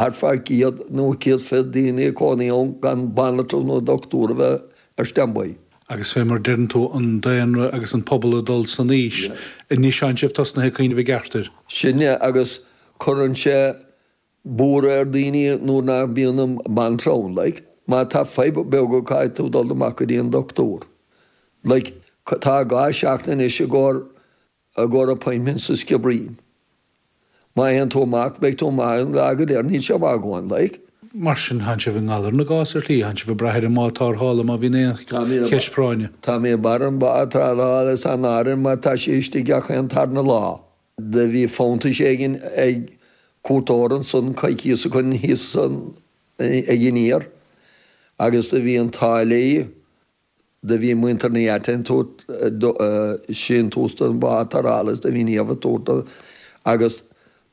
ar feadh 100 nó 120 daoine ag cónaí ann gan banaltra nó dochtúir a bheith ar standby. Agus fé mar deireann tú, an daonra agus an pobal ag dul san aois, anois tánn sibh tosnaithe ag cuimhneamh i gceart air. Sin é, agus cuireann sé buaireadh ar daoine nuair nach mbíonn an banaltra ann, like. Má tá fadhb beaga caithfidh tú dul amach go dtí an dochtúir, like. Tá dhá sheachtain anois i gcóir I gcóir appointment sa Sciobairín. Má théann tú amach beidh tú amach an lá go léir, níl sé maith a dhóthain, like. Mar sin tánn sibh i ngalar na gcás ar shlí, tánn sibh ag brath ar an mbád tarrthála má bhíonn aon cheist práinne. Tá mé ag brath ar an bád tarrthála san áireamh mar tá sé istigh gach aon tarna lá. Do bhí fanntais éigin ag cuairteoir ansan coicíos ó shin thíos ag aniar agus do bhí an t-ádh léi do bhí muintir na háite ag tabhairt síntiús don bhád tarrthála is do bhí Niamh á thabhairt dó agus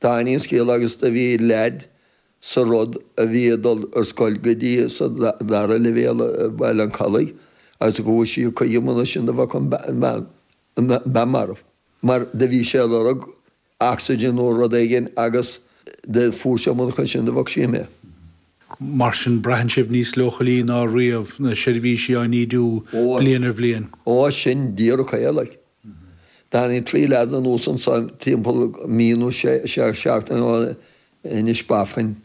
d'aithin sí an scéal agus do bhí leaid sa rud a bhí ag dul ar scoil go dtí sa dara leibhéal i Baile an Chollaigh agus go bhfuair sí a cuid iomann as sin do bheadh an bean marbh mar do bhí sé ag lorg ocsaigin nó rud éigin agus do fuair sí é murach é sin do bheadh sí imithe. Mar sin braitheann sibh níos leochailí ná riamh, na seirbhísí á n-ídiú bliain ar bhliain. Ó sin díreach é like. Tháinig trí lads anuas anseo timpeall mí nó sé seachtaine ó shin Inishbofin.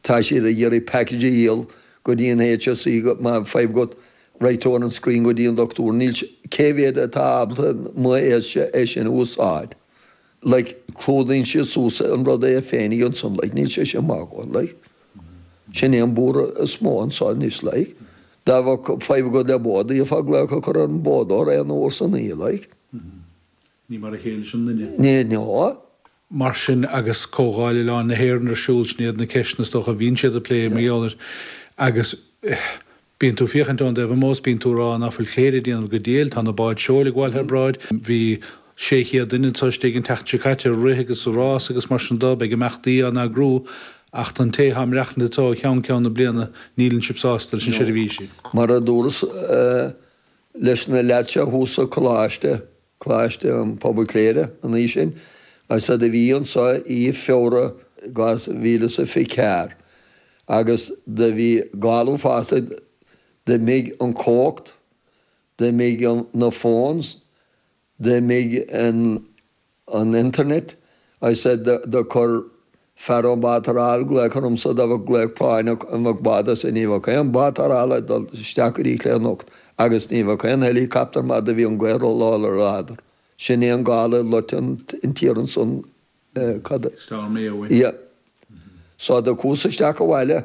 Tá siad ag iarraidh package a dhíol go dtí an HSE go má tá fadhb agat raghaidh tú ar an screen go dtí an dochtúir níl cé mhéad atá ábalta chun é sin a úsáid. like, clúdaíonn siad suas an rud é féinig ansan, like, níl sé sin maith a dhóthain, like. Sin é an buaireadh is mó anso anois, like. Dá bheadh fadhb agat le bád, d'fhéadfá glaoch a cur ar an bádóir aon uair san oíche, like. Ní mar a chéile leis an nduine. Ní, ná. Mar sin, agus Comhdháil Oileáin na hÉireann ar siúl, sin iad na ceisteanna, is dócha, a bhíonn siad a' plé, mar gheall air. Agus, eh, Bíonn tú ag féachaint ón dtaobh amuigh is bíonn tú ag rá, nach bhfuil Cléire ag déanamh go diail, tá na báid seoil ag gabháil thar bráid, bhí 600 duine anseo istigh an tseachtain seo caite ag rith agus ag rás agus mar sin de, beidh imeachtaí á n-eagrú ach don té atá ag maireachtaint anseo ó cheann ceann na bliana, níleann sibh sásta leis na seirbhísí. Mar a dúras leis na leaids seo thuas sa coláiste, Coláiste Pobail Chléire an mhí sin agus do bhí anso i Feabhra 2024 agus do bhí gála fosta d'imigh an cumhacht, d'imigh na fóns, d'imigh an internet agus do chuir. Fear an bád tarrthála ag glaoch ormsa dá mbeadh glaoch práinneach ní bheadh bád as ní bheadh aon bád tarrthála ag dul isteach go dtí Cléire anocht agus ní bheadh aon helicopter mar do bhí an gaoth róláidir ar an radar. Sin é an gála ag loiteadh an tír ansan cad é. Storm Éowyn. Yep. So do chuas isteach abhaile.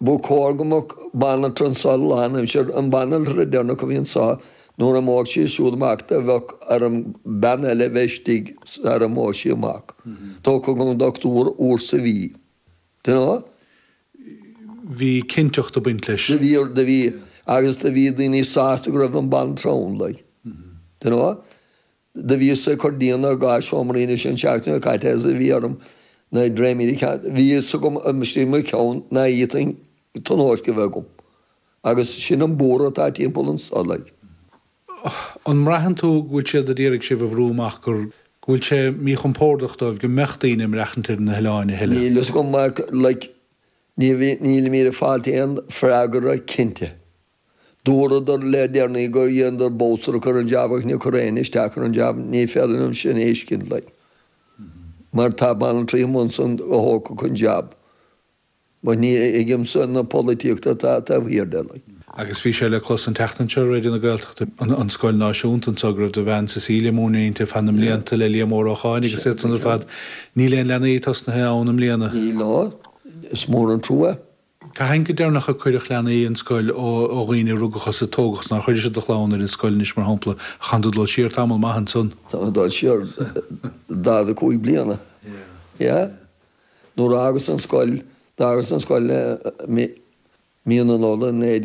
Ba chóir go mbeadh banaltra anso lánaimsir, an banaltra deireanach a bhí anso nuair a imeodh sí siúd amach do bheadh ar an mbean eile a bheith istigh sara n-imeodh sí amach. Thiocfadh an dochtúir uair sa mhí. Do bhí. bhí cinnteacht ag baint leis. Do bhí, do bhí. Agus do bhí daoine sásta go raibh an banaltra ann, like. Do Do bhíos-sa ag cur díon ar dhá seomra anois an seachtain seo caite agus do bhí orm na dréimírí a cheangal. Bhí fhios agam istigh i mo cheann ná féadfainn tionóisc a bheith agam. Agus sin an buaireamh atá timpeall anso, like. An mbraitheann tú go bhfuil siad ag iarraidh sibh a bhrú amach, go bhfuil sé míchompórdach dóibh go mbeadh daoine ag maireachtaint ar na hoileáin a thuilleadh? Níl fhios agam, like, níl mé ag fáilt aon freagra cinnte. Dúradar le déanaí gur dhéanadar bolscaireacht ar an jab ach níor cuireadh éinne isteach ar an jab, ní féidir liom sin a thuiscint like. Mar tá banaltraí amuigh ansan go dtógfadh an jab, but ní thuigimse na polaitíochta atá taobh thiar de like. Agus bhí sé le clos an tseachtain seo ar Raidió na Gaeltachta, an scoil náisiúnta anseo, go raibh do bhean Cecilia ag múineadh inti ar feadh na mblianta le Liam Ó Rócháin agus iad san ar fad. Níl aon leanaí tosnaithe ann i mbliana. Níl, no. Is mór an trua. Cathain go deireanach a cuireadh leanaí ar scoil ó dhaoine a rugadh agus a tógadh anso. Nuair a chuiris-se do chlann ar an scoil anois mar shampla. An gcaitheann tú dul siar tamall maith ansan. Tá mé ag dul siar 45 bliana, yeah. Nuair a fhágas an scoil, d'fhágas an scoil mí na Nollag 1970.